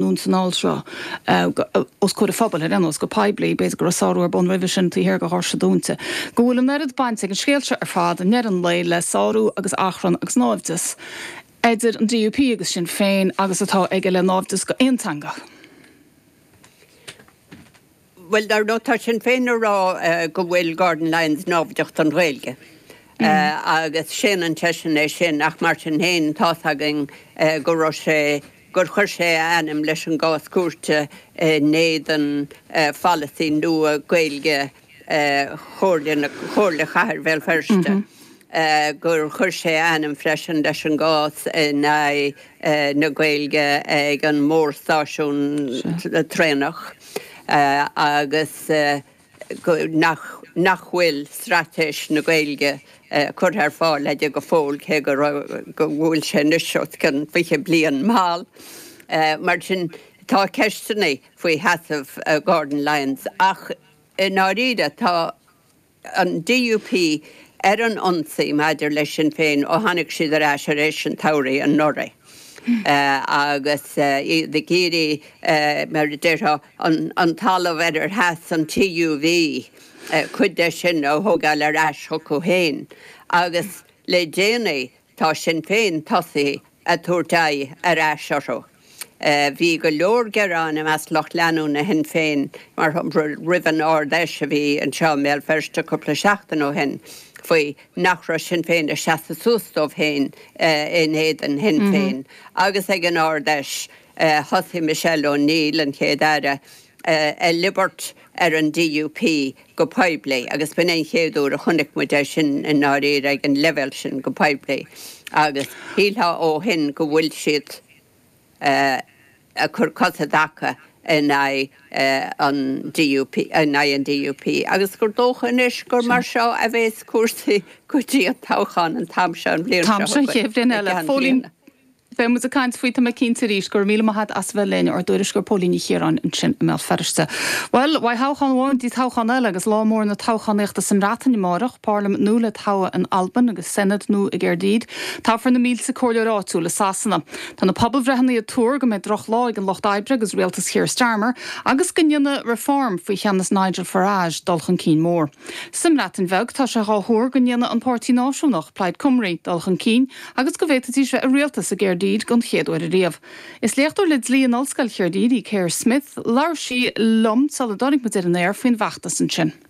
nó san alt seo, os comhair an phobail, ar aon nós, go poiblí, b'fhéidir go raibh sárú ar bun roimhe sin, taobh thiar de dhoirse dúnta, go bhfuil an oiread baint ag an scéal seo ar fad, i ndeireadh an lae, le sárú agus achrann agus naimhdeas idir an DUP agus Sinn Féin agus atá aige le naimhdeas do aon teanga. Bhuel dar ndóigh tá Sinn Féin ag rá go bhfuil Gordon Lyons naimhdeach don Ghaeilge agus séanann seisean é sin ach mar sin féin tá's againn go raibh sé, gur chuir sé a ainm leis an gcás cúirte in éadan pholasaí nua Gaeilge Chomhairle na, Chomhairle Chathair Bhéal Feirste, gur chuir sé a ainm freisin leis an gcás in aghaidh na Gaeilge ag an mórstáisiún traenach agus nach bhfuil Straitéis na Gaeilge curtha ar fáil aige go fóill, cé go raibh, go bhfuil sé anois os cionn 20 bliain mall. Mar sin, tá ceisteanna faoi sheasamh Gordon Lyons ach i ndáiríre tá an DUP ar an ionsaí maidir le Sinn Féin ó tháinig siad ar ais tar éis an tsamhraidh anuraidh agus iad ag iarraidh, mar a déarfá, an talamh ar ar sheas an TUV, cuid de sin, a thógáil ar ais chucu féin. Agus le déanaí Tá Sinn Féin tosaithe ag tabhairt aghaidh ar ais orthu. Bhí go leor gearáin i measc lucht leanúna Shinn Féin, mar shampla, roimh an Ard-Fheis a bhí anseo i mBéal Feirste cúpla seachtain ó shin faoi nach raibh Sinn Féin ag seasamh suas dóibh féin in éadan Shinn Féin agus ag an Ard-Fheis thosaigh Michelle O'Neill, an Chéad-Aire, ag liobairt. ar an DUP go poiblí agus b'in an chéad uair a chonaic muid é sin i ndáiríre ag an leibhéal sin go poiblí agus shílfeá ó shin go bhfuil siad ag cur cosa i dtaca in aghaidh an DUP, in aghaidh an DUP agus gur dócha anois gur mar seo a bheas cúrsaí go dtí an toghchán an t-am seo an bhliain seo chugainn, i gceann bliana. Beidh muid ag caint faoi, tá mé cinnte, arís. Go raibh míle maith agat as bheith linn, ár dtuairisceoir Póilín Ní Chiaráin ansin i mBéal Feirste. Bhuel, uaidh thoghchán amháin go dtí toghchán eile agus lá mór na toghchánaíochta sa mBreatain amárach, Pairlimint nua le togha in Albain agus Senedd nua i gCaerdydd. Toghfar na mílte comhairleoir áitiúil i Sasana. Tá na pobalbhreitheanna ag tuar go mbeidh drochlá ag an Lucht Oibre agus rialtas Keir Starmer agus go ndéanfaidh Reform, faoi cheannas Nigel Farage, dul chun cinn mór. Sa mBreatain Bheag tá sé dhá thuar go ndéanfaidh an páirtí náisiúnach, Plaid Cymru, dul chun cinn agus go bhféadfaidís bheith i rialtas i gCaerdydd don chéad uair ariamh. Is léachtóir le dlí in Ollscoil Chaerdydd í Caer Smyth. Labhair sí liom sula dtáinig muid ar an aer faoin bhfeachtas ansin.